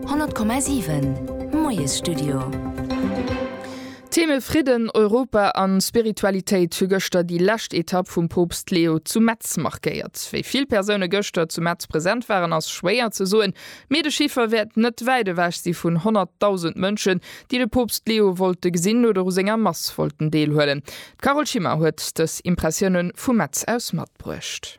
100,7 Moiesstudio. Theme, Fridden, Europa a Spiritualitéit hu gëschter déi lescht Etapp vum Poopst Leo zu Metz markéiert. Wéi vill Persoune gëschter zu Metz present waren ass schwéier ze soen, mee de Chiffer wäert net wäit ewech si vun 100.000 Mënschen, déi de Poopst Leo wollte gesinn oder u senger Mass wollten deelhuelen. D'Carole Schimmer huet dës Impressioune vu Metz aus matbruecht.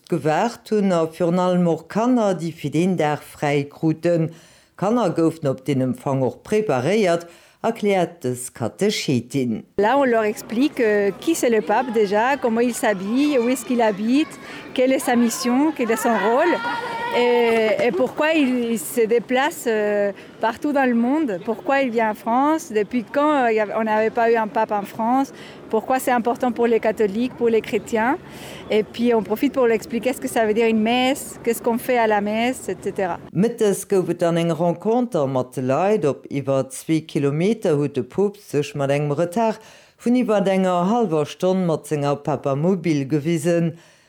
Gewaart hunn a virun allem och Kanner, déi fir deen Dag fräi kruten. D'Kanner goufen op deen Empfang och preparéiert, erkläert dës Katechetin. Là on leur explique qui c'est le Pape déjà, comment il s'habille, où est-ce qu'il habite, quelle est sa mission, quel est son rôle et pourquoi il se déplace partout dans le monde, pourquoi il vient en France, depuis quand on n'avait pas eu un Pape en France, Pourquoi c'est important pour les catholiques, pour les chrétiens et puis on profite pour l'expliquer ce que ça veut dire une messe, qu'est-ce qu'on fait à la messe, etc. Mëttes gouf et dann eng Renconter mat de Leit. Op iwwer zwee Kilometer huet de Poopst sech mat engem Retard vun iwwert enger hallwer Stonn mat senger Papamobil gewisen.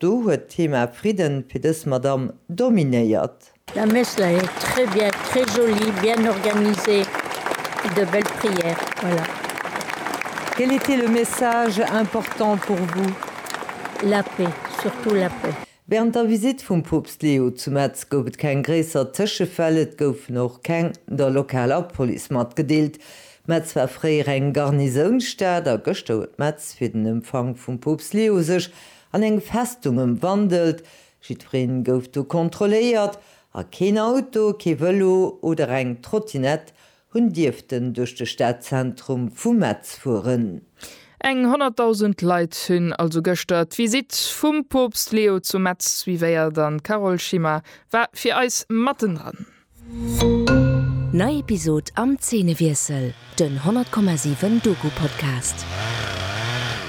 Do huet d'Thema Fridden fir dës Madamm dominéiert. Mme Messler, Très bien, très joli, bien organisé, de belle prière. Voilà. Quel était le message important pour vous? La paix, surtout la paix. Während der Visite vum Poopst Leo zu Metz gouf et keng gréisser Tëschefäll, et goufen och keng der lokaler Police matgedeelt. Metz war fréier eng Garnisounstad a gëschter huet Metz fir den Empfang vum Poopst Leo sech An eng Festung ëmwandelt. Jiddwereen gouf do kontrolléiert a keen Auto, kee Vëlo oder eng Trottinett hunn dierften duerch de Stadzentrum vu Metz fueren. Eng 100.000 Leit hunn also gëschter d'Visitt vum Poopst Leo zu Metz suivéiert an d'Carole Schimmer war fir eis matten dran. Nei Episod am Zeenewiessel, den 100,7 Doku-Podcast.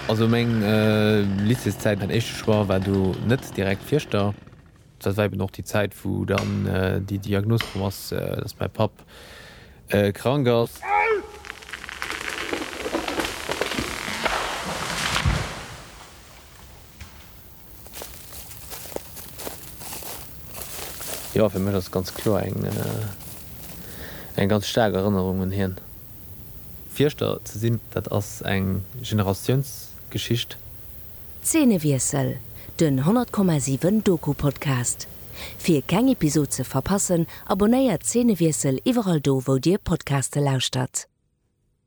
Also meng Lycéeszäit, mäin éischte Choix war do net direkt Fierschter. Dat war eben och déi Zäit, wou dann déi Diagnos komm ass, dass mäi Papp krank ass. Jo, fir mech ass et ganz kloer eng eng ganz staark Erënnerung un hien. Fierschter ze sinn, dat ass eng Generatiounsgeschicht. Zeenewiessel, den 100,7 Doku-Podcast. Fir keng Episod ze verpassen, abonnéiert Zeenewiessel iwwerall do wou dir Podcaste lauschtert.